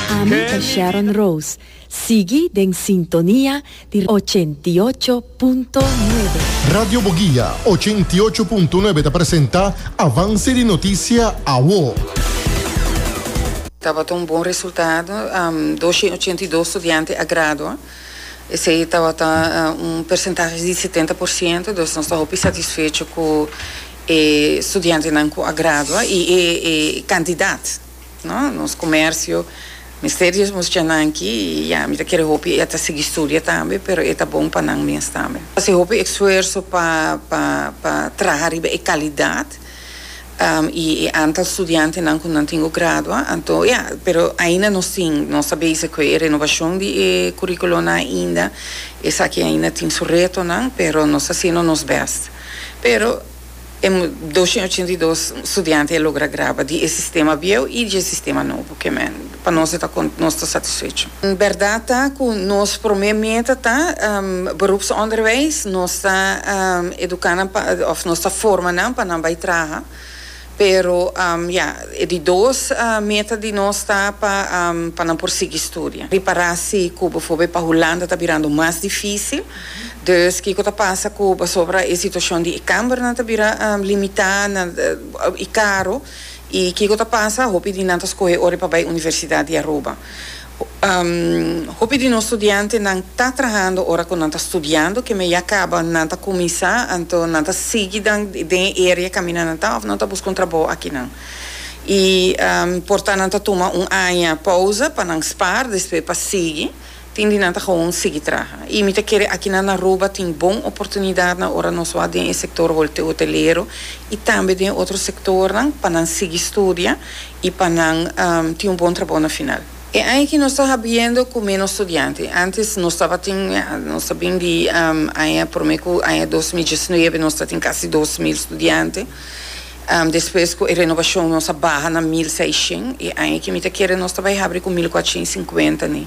Ami ta Sharon Rose. Sigui den sintonia di ochenta i ocho punto nuebe. Radio Boguia ochenta i ocho punto nuebe ta presenta Avance di Noticia Awo. Tabata un bon resultado, dos shen ochenta i dos studiante a gradua, esey tabata un percentahe di setenta por ciento, dus nos ta hopi satisfecho cu e studiantenan cu a gradua y e candidat. No, nos comercio mester di e mucha nan aki y ya, mi ta kere hopi e ta sigui studia tambe, pero e ta bon pa nan mes tambe. Hasi hopi esfuerso pa pa pa traha riba e calidad y e antal studiantenan cu nan tin cu gradua, anto ya, pero ainda nos tin, nos ta bezig cu e renovacion di e curiculonan ainda, esaki ainda tin su retonan, pero nos ta haciendo nos best, pero. e doshen ochenta i dos studiante a logra graba di e sistema bieu i di e sistema nobo. Ke men pa nos e ta kont nos ta satisfecho. Bèrdat ta ku nos promé meta ta Beroepsonderwijs. Nos ta eduká nan pa òf nos ta forma nan pa nan bai traha. Pero ya, e di dos meta di nos ta pa pa nan por sigui studia. Ripará si ku befo be pa Hulanda ta birando mas difísil. Dus kiko ta pasa ku pasobra e situashon di e kàmbernan ta bira limitá na i karo i kiko ta pasa? Hopi di nan ta skohe ora pa bai Universidat di Aruba. Hopi di nos studiantenan ta trahando ora ku nan ta studiando, keme ya kaba nan ta kuminsá, anto nan ta sigui dan den e area kaminda nan ta òf nan ta buska un trabou akinan? I por ta nan ta tuma un aña pousa pa nan spaar despues pa sigui, tin di nan ta gewoon sigui traha. I mi ta kere akinan na Aruba tin bon oportunidatnan ora nos wak den e sektor hotelero i tambe den otro sektornan pa nan sigui studia, y pa nan tin un bon trabou na final. E aña aki nos ta habiendo cu menos studiante. Antes nos tabatin, ya, nos ta bin di aña prome cu aña dos mil diesnuebe nos ta tin casi dos mil studiante. Despues cu e renovacion nos a baha na mil seishen y aña aki mi ta kere nos ta bay habri cu mil cuatrocientos y cincuenta ni.